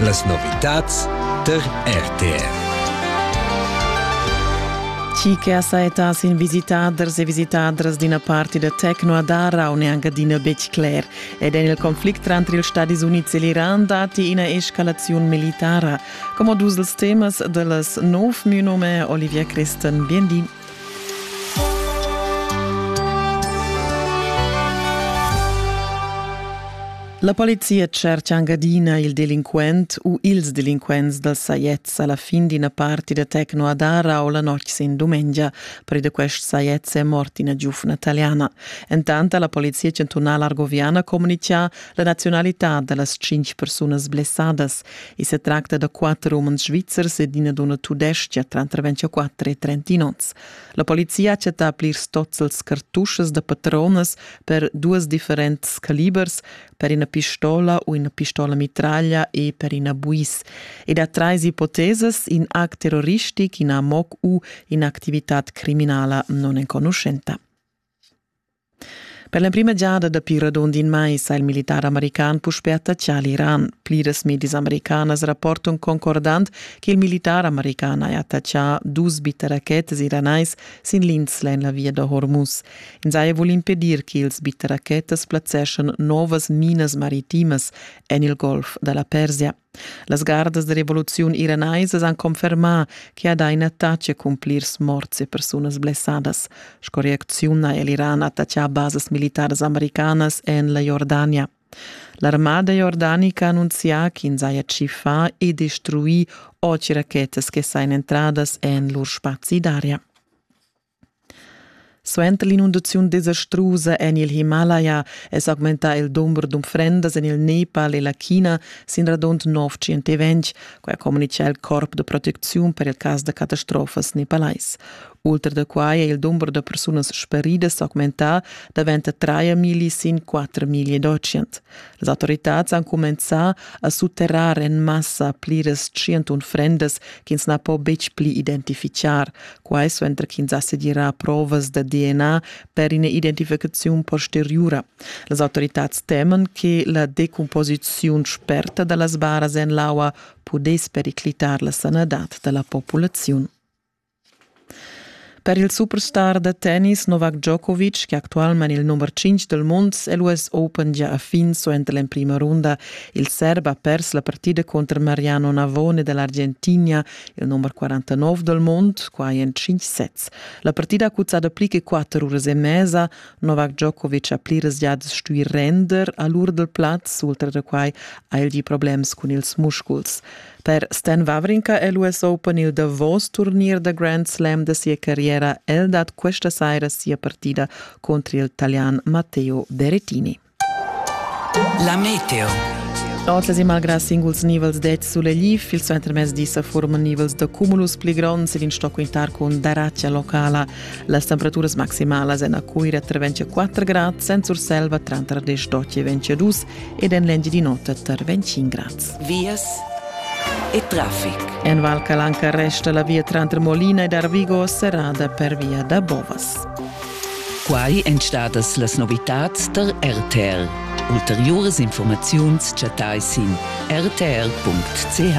Las novitads tar RTR. Chi che saetas in visitaders e visitadras d'ina parti da Tecno ad Ara un e anche d'ina betg cler. Ed en il conflict tranter ils Stati Units e l'Iran dati ina escalazione militara. Come dus dels temas de las nov mio nome Olivia Christen. Bien di. La polizia tschercha anc adina il delinquent u ils delinquents dals sajets a la fin d'ina parti da Tecno Adara o la notg sin dumengia. Per da quest sajets è mort ina giufna italiana. Entant ha la polizia chantunala argoviana communitgà la nazionalità da las cinq persunas blessadas. I se tracta da quatter umens svizzers ed ina donna tudestga tranter 24 e 31 onns. La polizia ha chattà plirs tozzels cartuschas da patronas per duas differents calibers, per ina pistola u ina pistola mitraglia e per ina buis. Ed ha trais ipotesas, in act terroristic, in amok u in'activitad criminala non enconuschenta. Per l'emprima giada dapi radund in mais ha il militar american puspè attaccà l'Iran. Pliras medias americanas rapportan concordant che il militar american ha attaccà dus bitterachetas iranais sin l'insla en la via da Hormuz. Ins haja vul impedir che ils bitterachetas plazzeschan novas minas maritimas en il golf da la Persia. Las gardas da revoluziun iranaisas han confermà che ha dà in attach cun plirs morts e persunas blessadas. Sco reacziun ha l'Iran attaccà basas militaras americanas en la Jordania. L'armada jordanica ha annunzià ch'ins haja tschiffà e destruì otg rachetas che sajan entradas en lur spazi d'aria. Suenter l'inundaziun desastrusa en il Himalaya è s'augmentà il dumber d'unfrendas en il Nepal e la China sin radund nov tschientaventg. Quai communitga il corp da protecziun per il cas da catastrofas nepalais. Ultra da quai è il dumber da persunas speridas s'augmentà davent da 3 migli sin 4 migli d'ocean. Las autoritads han cumenzà a sutterrar en massa pliras 100 unfrendas ch'ins na po betg pli identifichar, quai suenter ch'ins ha segirà provas da DNA per ina identificaziun posteriura. Las autoritads teman che la decumposiziun sperta da las baras en l'aua pudess periclitar la sanadad da la populaziun. Per il superstar da tennis Novak Djokovic, che actualmein il nummer 5 del mund l'US Open già ha fin suenter l'emprima runda, il serb ha pers la partida contro Mariano Navone dell'Argentina il number 49 del mund, quai en 5 sets. La partida cuzzada pli che 4 uras e mesa, Novak Djokovic ha pli resgiads stui render a l'ur del plaz, ultra da quai ha el gì problems cun ils musculs. Per Stan Wawrinka è l'US Open il davos turnier da Grand Slam da sia carriera. El dat questa saira sia partida contro il italian Matteo Berrettini. La meteo. Otlas e malgrà singuls nivels dets sulegliv, il suo intermezzi sa formano nivels da cumulus pli gronds ed in stock intar con daratgia locala. Las temperaturas maximalas en a Cuira tra 24 grad, sen Surselva tra 28 e 22 ed en l'engi di notte tra 25 grad. Vias e traffic. En Val Calanca resta la via trantre Molina ed Arvigo serrada per via da Bovas. Quai èn stadas las novitads tar RTR. Ulteriuras informaziuns chattai sin rtr.ch.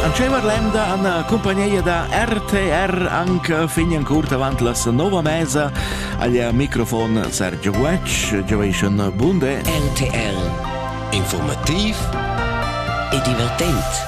An Cemar Lemda an cumpagneia da RTR anc fin en curt avant las nova mesa agl microfon Sergio Guetsch, Giovation Bunde. RTR. Informativ e divertent.